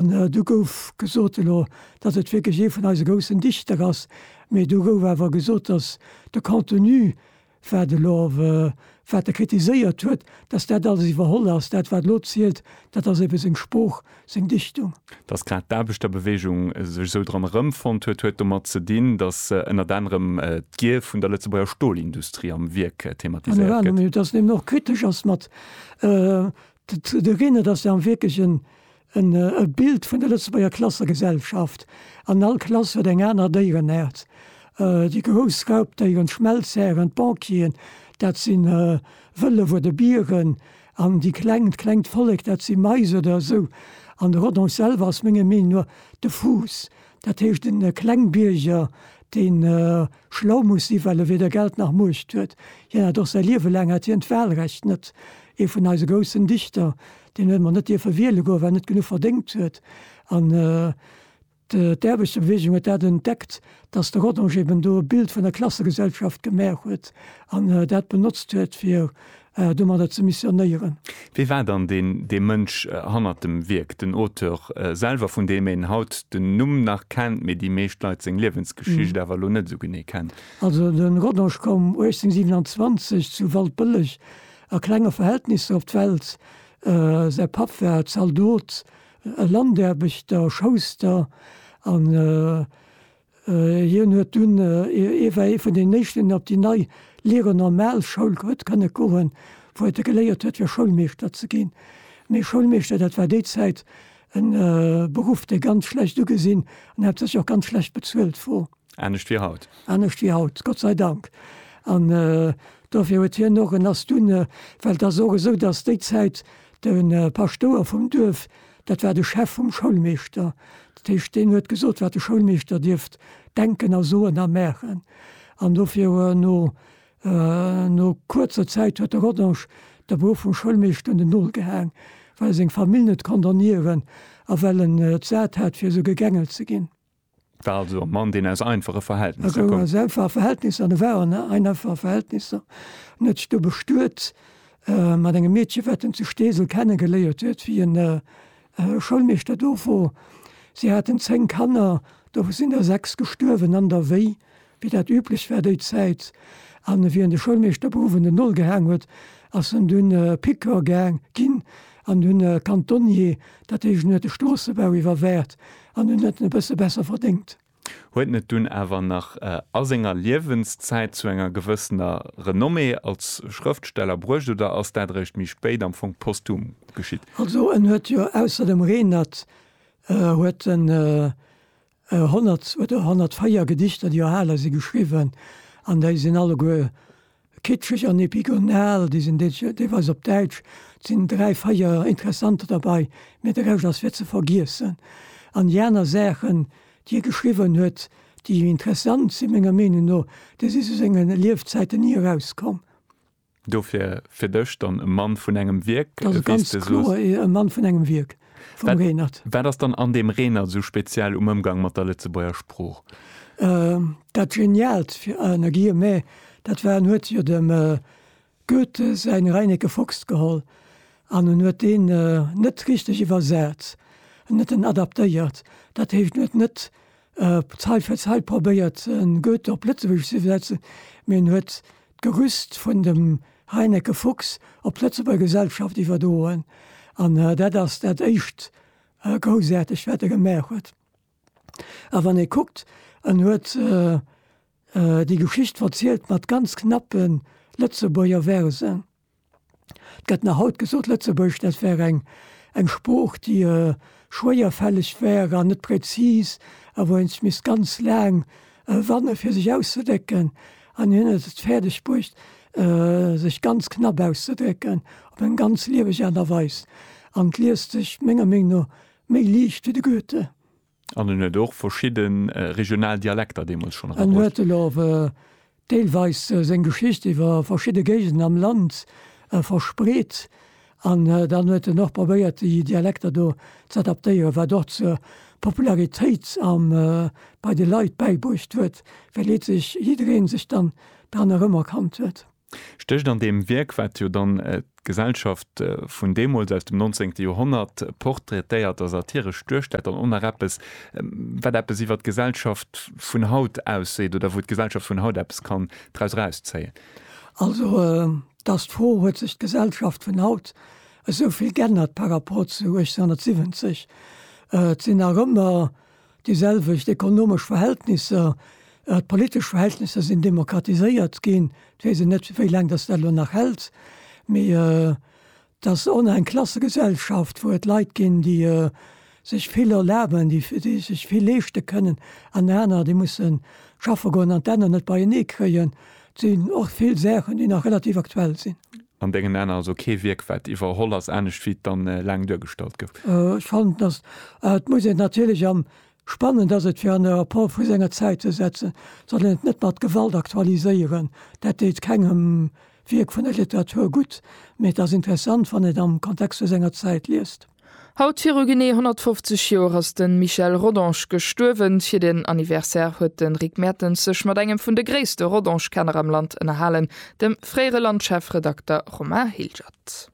Do gouf gesot elo, datt et wierklech ee vun eise groussen Dichter ass, mee do gouf awer gesot, datt de Contenu, wat elo, wat e kritiséiert huet, datt dat alles iwwerholl ass. Dat wat elo zielt, dat ass ebe seng Sprooch, seng Dichtung. Datt grad d'Aarbechterbeweegung sech esou dran erëmfonnt huet, huet domat ze dinn, datt ënnert anerem d'Gier vun der Lëtzebuerger Stolindustrie am Wierk thematiséiert gëtt. Datt en eben och kritesch ass mat de Reenert, datt der am Wierklechen En Bild vun der Lëtzebuerger Klassegesellschaft. An all Klass huet eng aner Déierenäert. Déi grouss Raubdéieren, d'Schmelzhären, d'Banquieren, dat si Wëllef oder Bieren. An déi kleng, d'klengt Vollek, dat si Mais oder esou. An de Rodon selwer ass menger Meenung no de Fuuss. Dat heescht den Klengbierger, deen schlau muss sinn, well e weder Geld nach Muecht huet. Hien hat och säi Liewe laang hat hien d'Wahlrecht net. Ee vun eise groussen Dichter, deen huet emol net dierfe wiele goen, well en net genuch verdéngt huet. An d'Aarbechterbewegung huet dat entdeckt, datt de Rodange eben do e Bild vun der Klassegesellschaft gemaach huet an dat benotzt huet, fir domadder ze missionéieren. Wie war dann deen dee Mënsch hannert dem Wierk, den Auteur selwer, vun deem een haut den Numm nach kennt, mee déi meescht Leit seng Liewensgeschicht awer elo net esou genee kennen? Also de Rodange koum 1827 zu Waldbëlleg a klenge Verhältnisser op d'Welt. Säi Papp war Zaldot, e Landaarbechter, Schouster an Hien huet dunn, ier war ee vun den éischten op déi nei Lire normale Schoul huet kënne goen, wou et e geléiert huet fir Schoulmeeschter ze ginn. Mee Schoulmeeschter, dat war déi Zäit en Beruff dee ganz schlecht ugesinn an haaptsächlech och ganz schlecht bezuelt wor. Anescht wéi haut. Anescht wéi haut, Gott sei Dank. An dofir huet hien och, en ass dunn, well et ass och esou, datt déi Zäit de Paschtouer vum Duerf Dat war de Chef vum Schoulmeeschter. Dat heescht, deen huet gesot, wat de Schoulmeeschter dierft denken a soen a maachen. An dofir huet no, no kuerzer Zäit huet de Rodange de Beruff vum Schoulmeeschter un den Nol gehaang, well e seng Famill net konnt ernieren a well en et sat hat, fir esou gegängelt ze ginn. War also e Mann, deen aus einfache Verhältnisser koum. E koum aus einfache Verhältnisser an e war an einfache Verhältnisser. En huet sech do bestuet mat engem Meedchen, wat en zu Steesel kennegeléiert huet, wéi en Schoulmeeschter do wor. Si haten zéng Kanner, dovun sinn der sechs gestuerwen an der Wéi. Wéi dat üblech war déi Zäit, a wéi en de Schoulmeeschter op Owend en Noll gehaang huet, ass en dunn Piqueur gaang ginn an dunn Kantonnier, dat heescht en huet de Stroossebau iwwerwäert an en huet en e bësse besser verdéngt. Huet en et dunn awer nach a senger Liewenszäit zu enger gewëssener Renommée als Schrëftsteller bruecht oder ass dat eréischt méi spéit, am Fong posthum, geschitt? Also en huet jo ausser dem Renert huet en 100 oder 104 Gedichter, déi erhale si geschriwwen, an déi sinn alleguer kitscheg an epigonal, déi sinn deelweis op Däitsch. Et sinn dräi, véier interessant derbei, mä de Rescht ass fir ze vergiessen. An déi aner Saachen, déi e geschriwwen huet, déi interessant sinn, menger Meenung no, déi si zu sengen Liefzäiten ni erauskomm. Dofir fir dech dann e Mann vun engem Wierk? Dat ass ganz kloer e Mann vun engem Wierk, vum Renert. Wat ass dann an deem Renert esou speziell um Ëmgang mat der Lëtzebuerger Sprooch? Dat Geniaalt, fir ënner Guillemets, dat war, en huet jo dem Goethe säin Reineke Fox geholl an en huet deen net richteg iwwersat, en huet en adaptéiert. Dat heescht, en huet net Zait fir Zait probéiert en Goethe op Lëtzebuergesch ze iwwersetzen, mee en huet d'Gerüst vun dem Reineke Fuchs op d'Lëtzebuerger Gesellschaft iwwerdroen. An dat ass dat éischt Groussaartegt, wat e gemaach huet. A wann ee kuckt, en huet déi Geschicht verzielt mat ganz knappe Lëtzebuerger Versen. Et gëtt nach haut gesot, Lëtzebuergesch, dat wär eng eng Sprooch, déi schwéierfälleg wär an net präzis a wou ee sech misst ganz laang wanne fir sech auszedrécken. An hien huet et fäerdeg bruecht, sech ganz knapp auszedrécken, op eng ganz lieweg Aart a Weis. An 't liest sech menger Meenung no méi liicht wéi de Goethe. An en huet och verschidde regional Dialekter deemools schonn erabruecht. En huet elo och deelweis seng Geschicht iwwer verschidde Géigenden am Land verspreet. An dann huet en och probéiert, déi Dialekter do ze adaptéieren, wat och zur Popularitéit bei de Leit bäibruecht huet, well jidderee sech dann dran erëmerkannt huet. Stécht an deem Wierk, wat jo dann d'Gesellschaft vun deemools, aus dem nonzéngte Joerhonnert, portraitéiert a satiresch duerstellt, dann och nach eppes, wat eppes iwwer d'Gesellschaft vun haut ausseet oder wou d'Gesellschaft vun haut eppes kann draus erauszéien? Also, et ass d'Fro, Huet sech d'Gesellschaft vun haut esou vill g'ännert par rapport zu 1870? Et sinn nach ëmmer Déi selwecht ekonomesch Verhältnisser, awer d'politesch Verhältnisser sinn demokratiséiert ginn. Et weess een net, wéi laang datt dat elo nach hält, mee et ass ohne eng Klassegesellschaft, wou et Leit ginn, déi sech vill erlaben, déi sech vill leeschte kënnen an aner, déi musse schaffe goen an d'Enner net beienee kréien. Et sinn och vill Saachen, déi nach relativ aktuell sinn. An dengen Aan also kee Wierk waat iwwerholl ass, aanescht wéi et dann laang duergestallt gouf. Ech fannen dass et muss een natierlech am spannend ass et fir an e Rapport vu senger Zäit ze setzen, soll een et net mat Gewalt aktualiséieren, dat deet kengem Wierk vun der Literatur gutt, mee et ass interessant wann een et am Kontext vu senger Zäit liest. Haut viru genee 150 Joer ass de Michel Rodange gestuerwen. Fir den Anniversaire huet de Rick Mertens sech mat engem vun de gréisste Rodange-Kenner am Land ënnerhalen, dem fréiere Land-Chefredakter Romain Hilgert.